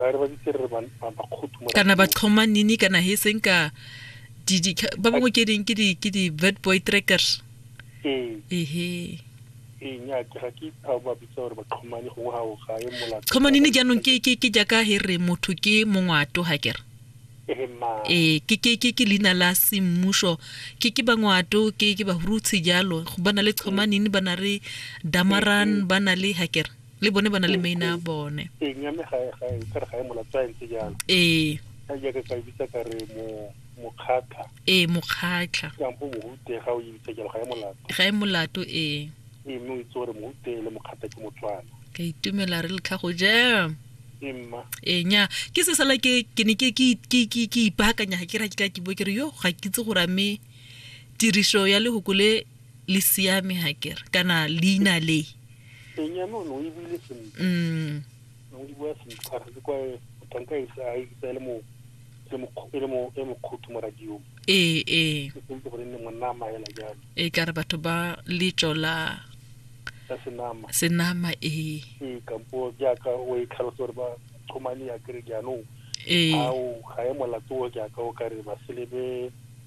ba re ba bitse re bakgothu kana ba tlhoma nini kana he seng ka ba bangwe ke ding ke di ke di bad boy trackers ee ehe ee nya ke ga ke itha ba bitsa gore ba tlhomane gongwe ga o ga e molato tlhomane ne jaanong ke ke ke jaka he re motho ke mongwato ha kere ee ke ke ke ke leina la semmuso ke ke bangwato ke ke bahurutshi jalo go bana le tlhomanini bana re damaran bana le ha kere le bone ba na le maina a bone eng ya me ga e- ga e- ka re ga e molato a ntse jalo ee ka jaaka ka e bitsa ka re mo mokgatlha ee mokgatlha kampo mohute ga o e bitsa jalo ga e molato ga e molato ee ee mme o itse gore mohute le mokgatlha ke motswana ka itumela re letlha go jam ee mma ee nya ke se sala ke ke ne ke ke ke ke ke ipaakanya ga ke ra ke ka ke bo ke re yo ga ke itse gore a mme tiriso ya lehoko le le siame ga kere kana leina le teng ya nono e buile sentle mm o di bua sentle ga re kwa tanka e sa e sa le mo le mo e le mo e mo khutu mo radio ee ee ke sentse gore ne monna a maela jalo e ka re batho ba letso la ka senama senama ee ee kampo jaaka o e tlhalosa gore ba thomane ya kere jaanong ee ao ga e molato o jaaka o ka re ba selebe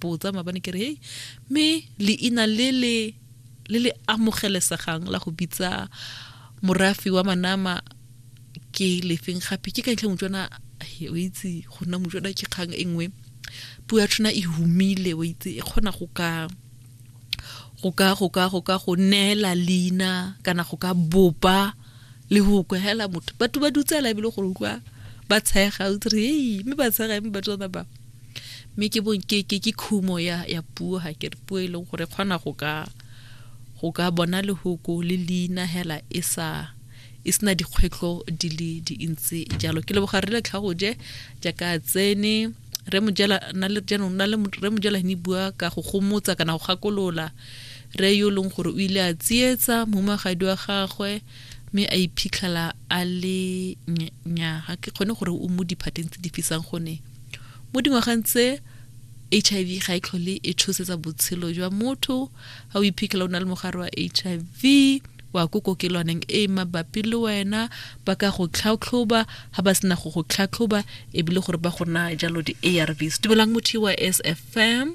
botsa maabane ke re hei mme leina le le le le amogelesegang la go bitsa morafi wa manama ke lefeng gape ke ka ntlha motswana o itse go nna motswana ke kgang e nngwe puo ya tshwana e humile o itse e kgona go ka go ka go ka go ka go neela leina kana go ka bopa le go kwa hela motho batho ba dutsela ebile gore utlwa ba tshega o dire ei mme ba tshega mme batho ba ba mme ke bong ke ke ke khumo ya ya puo ha ke puo e leng gore kgona go ka go ka bona lehoko le leina hela e sa e sena dikgwetlho di le dintsi jalo ke leboga re le tlhago je jaaka tsene re mojela na le jaanong na le re mojela ne bua ka go gomotsa kana go gakolola Re yo leng gore o ile a tsietsa momagadi wa gagwe mme a iphitlhela a le nya ga ke kgone gore o mo diphateng tse di fisang gone mo dingwageng tse h i v ga e tlhole e tshosetsa botshelo jwa motho ga o iphitlhela o na le mogare wa h i v wa ko kokelwaneng e mabapi le wena ba ka go tlhatlhoba ga ba sena go go tlhatlhoba ebile gore ba go naya jalo di-arvs dumelang motho wa s f m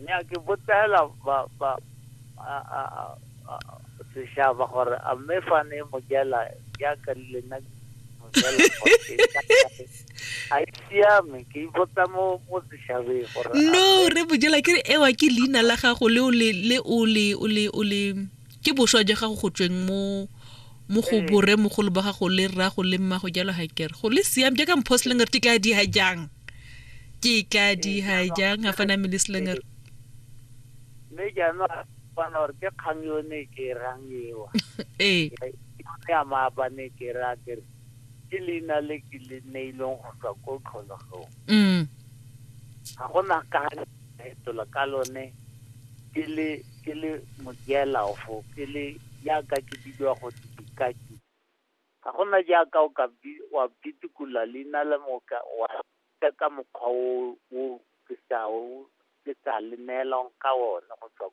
nyake botela ba ba a a a- a- sešaba gore a mme fa ne mo jela jaaka le nna ke mo jela gore ke ka kae. a e siame ke ipotsa mo mo sešabeng gore a no mme re bojela ke re ewa ke leina la gago le o le le o le o le o le Ke boswa ja gago go tsweng mo mo go borre mogolo ba gago le rrago le mmago jalo ga kere go le siame jaaka mpho slinger ke tla diha jang ke tla diha jang ga fana mele slinger mme jaanong a bona gore ke kgang yo ne ke rang ewa ee ya maabane ke ra ke re ke leina le ke le neilweng go tswa ko tlhologong mm ga gona ka Baetola ka lone, ke le, ke le modialaofo, ke le, jaaka ke bidiwa gote dikaki. Ga go na jaaka o ka bi-, wa bidikola leina la me o ka, wa ja ka mokgwa o o, o ke sa o, ke sa le neelwang ka one go tswa ko.